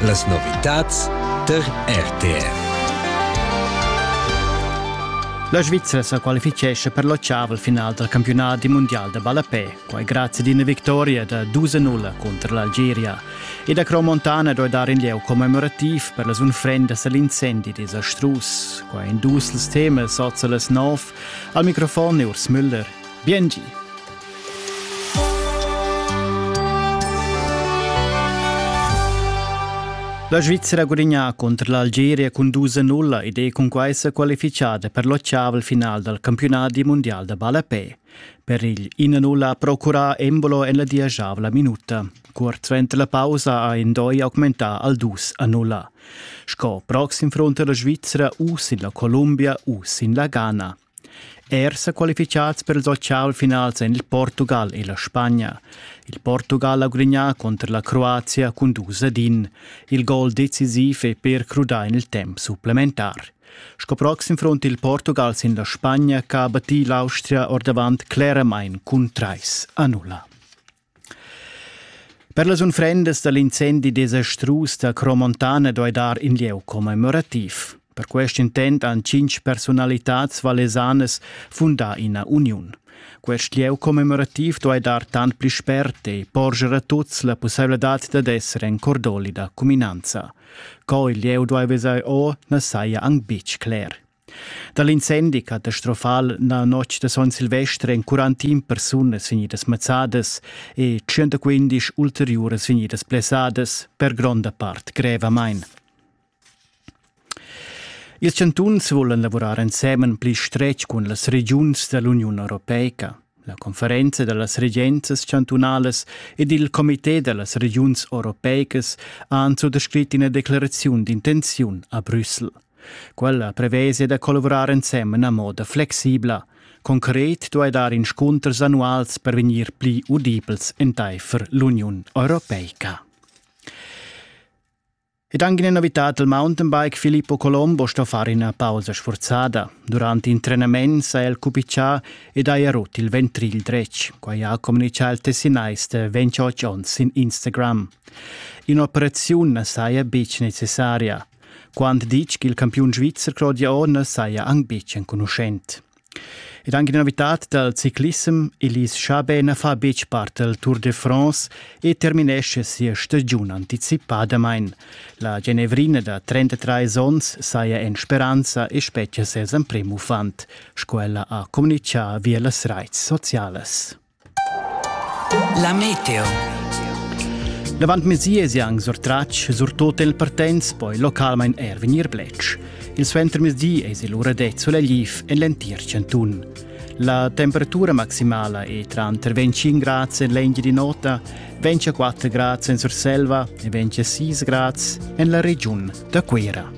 Las novitads tar RTR. La Svizzera sa qualifichescha per l'occiavel final dal campiunat mundial da ballapè, quai grazie ad una victoria da 2-0 contro l'Algeria. E da Cromontana doi dar in lieu commemorativ per las unfrendas all'incendi desastrus. Qua in dus temas, oza las 9, al microfon Urs Müller. Biengi! La Svizzera gudagnà contro l'Algeria cun dus a nulla ed è cun quai sa qualifichada per l'ottavel final dal campionat di mondial da ballapè. Per il 1-0 ha procurà Embolo en la diagiavla minuta. Curt suenter la pausa ha Indoi augmentà al 2-0. Sco proxim front la Svizzera u sin la Columbia u sin la Ghana. Er sa qualifichads per ils otg-final ein il Portugal e la Spagna. Il Portugal ha gudignà cunter la Croazia cun dus ad in. Il gol decisiv è per crudar en il temp supplementar. Sco proxim front il Portugal sin la Spagna che ha battì l'Austria ordavant cleramain cun trais a nulla. Per las unfrendas dal incendi desastrus da Cromontana doi dar in lieu commemorativ. Per quest intent han cinc personalitads valesanas fundà ina uniun. Quest lieu commemorativ doi dar tant pli spert e porger a tuts la pussailadad dad esser en cordoli da cuminanza. Co il lieu doi vesai o na saja anc bitg cler. Da l'incendi catastrofal na notg da Son Silvester èn 41 persunas vegnidas mazzadas e 115 ulteriuras vegnidas blessadas, per gronda part grevamain. Ils chantuns vulan lavurar ensemen pli stretg cun las regiuns da l'Uniun europeica. La conferenza da las regenzas chantunalas ed il comité da las regiuns europeicas han suttascrit ina declaraziun d'intenziun a Brüssel. Quella prevesa da collavurar ensemen a moda flexibla. Concret duai dar inscunters annuals per vegnir pli udibels entaifer l'Uniun Europeica. Ed anche in abitat del mountainbike Filippo Colombo sto far ina pausa sforzada. Durante in trenament s'ha el cupiccià ed haja rut il ventrigl dretg, quai ha communicà il tessinais de 28 onns in Instagram. Un'operaziun saja buc necessaria. Quant ditg il campiun svizzer Claudia Orner saja anc buc enconuschent. Ed anche novitad dal ciclissem, Elise Schabener fa betg part del Tour de France e terminesce sia stagiun anticipadamain. La Genevrina da 33 onns saja en speranza e spetgia ses emprem uffant, sco ella ha communitgà via las raits socialas. La meteo. L'avant mesi es anc surtratg surtot el partenz poi localmain er vegnir bletsch. Il suentermezdi es il ura det solegliv en l'entir chantun. La temperatura maximala è tranter 25 grads en l'engia di nota, 24 grads en Surselva e 26 grads en la regiun da Cuira.